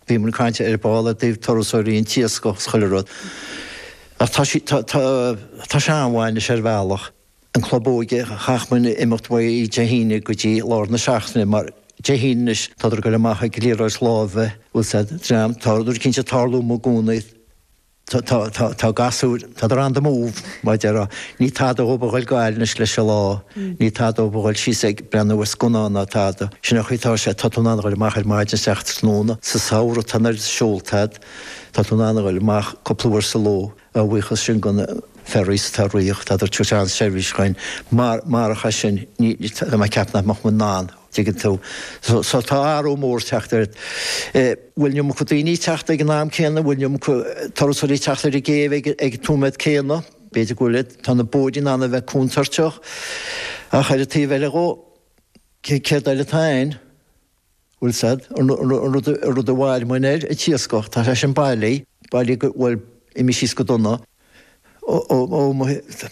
Bhí muid ag caint ar ball i dtaobh turasóirí, an t-iascach is chuile rud. Ach tá sí, tá, tá, tá sé an-mhaith anois ar bhealach. An club óige, chaith muid imeacht uaidh Dé hAoine go dtí lár na seachtaine mar Dé hAoine anois tádar ag goil amach ag liathróid láimhe, bhuel sea, dream, tádar cinnte ag tarlú i gcónaí. tá, tá, tá, tá gasúir, tá, they're on the move mar a déarfá, ní tada dhób a dhul go Gaillimh anois leis an lá, ní tada dhób a dhul síos ag breathnú ar scannán ná tada. Sin an chaoi atá sé, tá tú in ann a dhul amach ar maidin isteach tráthnóna, sa samhradh tá an oiread seolta agat, tá tú in ann a dhul amach cúpla uair sa ló a bhuíochas sin do na ferries atá ag rith, tá an tseirbhís againn mar, mar, ach as sin, ní, ní, tá mé ag ceapadh nach mbeadh muid in ann. dtuigeann tú. So tá athrú mór ag teacht, an bhfuil iomarca daoine ag teacht ag an am céanna, bhfuil iomarca turasóirí ag teacht ar an gcéibh ag ag an nóiméad céanna, b'fhéidir go bhfuil a, tá na bóithrí in ann a bheith contúirteach. Ach ar an taobh eile dhó, cé céard eile atá a'inn? Bhfuil a fhios a'd, an an rud an rud a mhair muid air, an t-iascach, tá sé sin bailí, bailí go, bhuel, imigh síos go dona,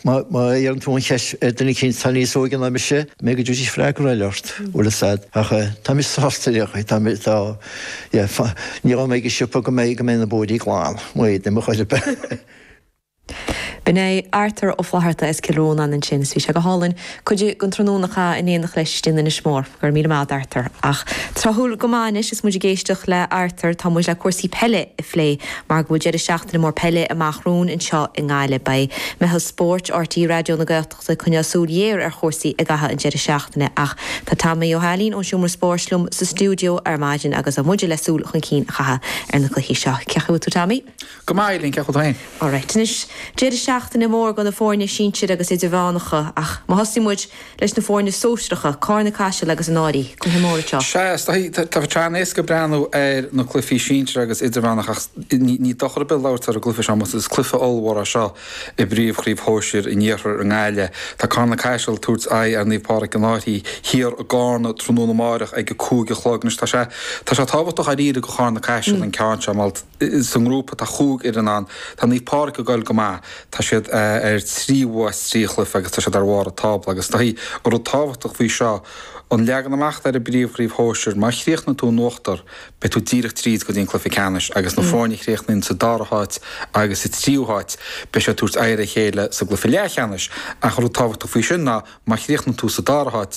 Má iarrann tú an cheist ar duine éicint atá níos óige ná mise, b'fhéidir go dtabharfaidh sé freagra eile ort, bhfuil a fhios a'd, ach táimid sásta le haghaidh, táimid, tá, yeah, fá, ní raibh mé ag an siopa go mbeidh, go mbeidh na bóithrí glan, maífidh mé, mo chuid ab ea. B'in é Arthur Ó Flatharta as Cill Rónáin ansin is bhí sé go hálainn. Cuid den tráthnóna a chaith in éineacht leis in Inis Mór. Go raibh míle maith a'd, Arthur. Ach tráthúil go maith anois is muid ag éisteacht le Arthur, tá muid le cúrsaí peile a phlé mar go bhfuil deireadh seachtaine mór peile amach romhainn anseo i nGaillimh. Beidh meitheal spóirt RTÉ Raidió na Gaeltachta ag coinneáil súil ghéar ar chúrsaí i gcaitheamh an deireadh seachtaine ach tá Tommy Ó hAilín ón Seomra Spóirt liom sa stiúideo ar maidin agus muide le súil chun cinn a chaitheamh ar na cluichí seo. Cén chaoi a bhfuil tú Tommy? Go maith, Ailín, cén chaoi a bhfuil tú féin? Alright, anois, deireadh seachtaine mór go na foirne sinsir agus idirmheánacha, ach má thosaíonn muid leis na foirne sóisearacha, Carna Caiseal agus an Áirí, cluiche mór atá. Sea, is dóichí, tá sé an-éasca ag breathnú ar na cluichí sinsir agus idirmheánacha ach ní dochar ar bith labhairt ar an gcluiche seo, mar is cluiche ollmhór é seo i bpríomhchraobh shóisir in iarthar i nGaillimh. Tá Carna Caiseal ag tabhairt aghaidh ar Naomh Pádraig in Aird Thiar i gCarna tráthnóna amáireach ag a cúig a chlog. Anois, tá sé, tá sé tábhachtach, i ndáiríre, go Carna Caiseal an ceann seo, mar, sa ngrúpa atá chúig fhoireann ann, tá Naomh Pádraig ag goil go maith, tá siad ar trí bhua as trí chluiche agus tá siad ar bharr an tábla agus tá an rud tábhachtach faoi seo, an leagan amach atá ar an bpríomhchraobh shóisir, má chríochnaíonn tú in uachtar, beidh tú díreach tríd go dtí an cluiche ceannais agus na foirne a chríochnaíonn sa dara háit agus sa tríú háit, beidh siad ag tabhairt aghaidh ar a chéile sa gcluiche leathcheannais ach an rud tábhachtach faoi sin ná má chríochnaíonn tú sa dara háit,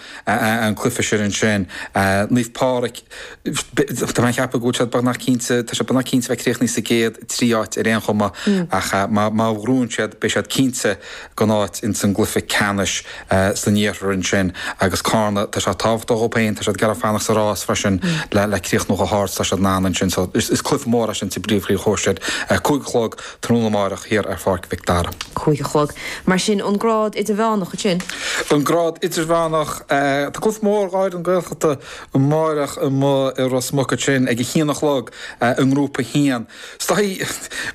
an cluife sin ansin. Naomh Páraic, tá mé a cheapadh go bhfuil siad beagnach cinnte, tá siad beagnach cinnte bheith críochnaithe sa gcéad trí áit ar aon chuma ach má ghnóthaíonn siad, beidh siad cinnte den áit ins an gcluife ceannais san iarthar ansin. Agus Cárna, tá sé tábhachtach dhób féin, tá siad ag iarraidh fanacht sa rás freisin le críochnú chomh hard 's tá siad in ann ansin. So, is cluife mór é sin sa bpríomhchraobh shóisir. Cúig a chlog. Tráthnóna amárach thiar ar Pháirc Mhic Dara. Cúig a chlog. Mar sin, an grád idirmheánach ansin? An grád idirmheánach. Tá cluiche mór gháire na Gaeltachta amárach amuigh i Ros Muc ansin ag a haon a chlog i nGrúpa 1. Is dóichí,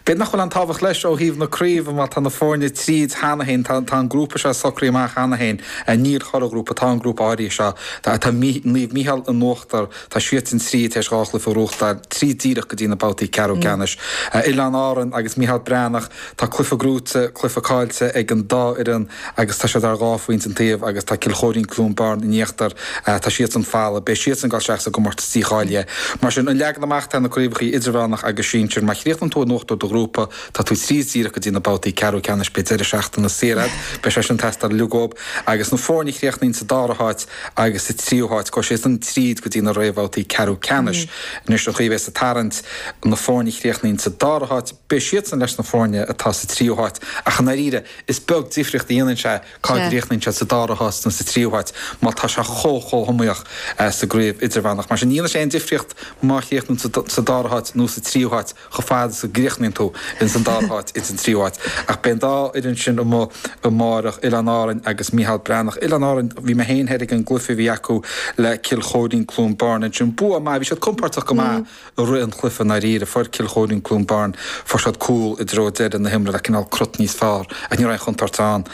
b'fhéidir nach bhfuil an tábhacht leis ó thaobh na craoibhe mar tá na foirne tríd cheana féin, tá an grúpa seo socraithe amach cheana féin. Níl chuile ghrúpa, tá an grúpa áirithe seo, tá Naomh Micheál in uachtar, Tá siadsan tríd théis dhá chluiche a ghnóthachtáil, tríd díreach go dtí na babhtaí ceathrú ceannais. Oileáin Árann agus Micheál Breathnach, tá cluiche gnóite, cluiche cáillte ag an dá fhoireann agus tá siad ar dhá phointe an taobh agus tá Cill Chóirín-Cluain Bheirn in íochtar. Tá siadsan folamh. Beidh siadsan ag dul isteach sa gcomórtas dícháilithe. Mar sin an leagan amach atá ag na craobhacha idirmheánach agus sinsir. Má chríochnaíonn tú in uachtar do ghrúpa, tá tú tríd díreach go dtí na babhtaí ceathrú ceannais. Beidh deireadh seachtaine saor agat. Beidh sé sin ag teastáil uilig uathub. Agus na foirne a chríochnaíonn sa dara háit agus sa tríú háit, gabhfaidh siadsan tríd go dtí na réamhbhabhtaí ceathrú ceannais. Anois an chaoi a bheas an tarraingt, na foirne a chríochnaíonn sa dara háit, beidh siadsan leis na foirne atá sa tríú háit, ach i ndáiríre, is beag difríocht a dhéanann sé cá gcríochnaíonn siad, sa dara háit nó sa tríú háit, mar tá sé chomh chomh hiomaíoch sa gcraobh idirmheánach. Mar sin, ní dhéanann sé aon difríocht má chríochnaíonn tú sa dara háit nó sa tríú háit, chomh fada is a gcríochnaíonn tú ins an dara háit ins an tríú áit. Ach beidh an dá fhoireann sin amuigh amáireach, Oileáin Árainn agus Micheál Breathnach. Oileáin Árainn, bhí mé féin thoir ag an gcluife a bhí acu le Cill Chóirín-Cluain Bheirn ansin. Bua maith. Bhí siad compordach go maith i rith an chluife i ndáiríre. Fuair Cill Chóirín-Cluain Bheirn, fuair siad cúl i dtreo deireadh na himeartha le cineál cruth níos fearr ach ní raibh aon chontúirt ann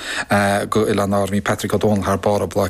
go Oileáin Árainn. Bhí Patrick Ó Dónaill thar barr ar Bláth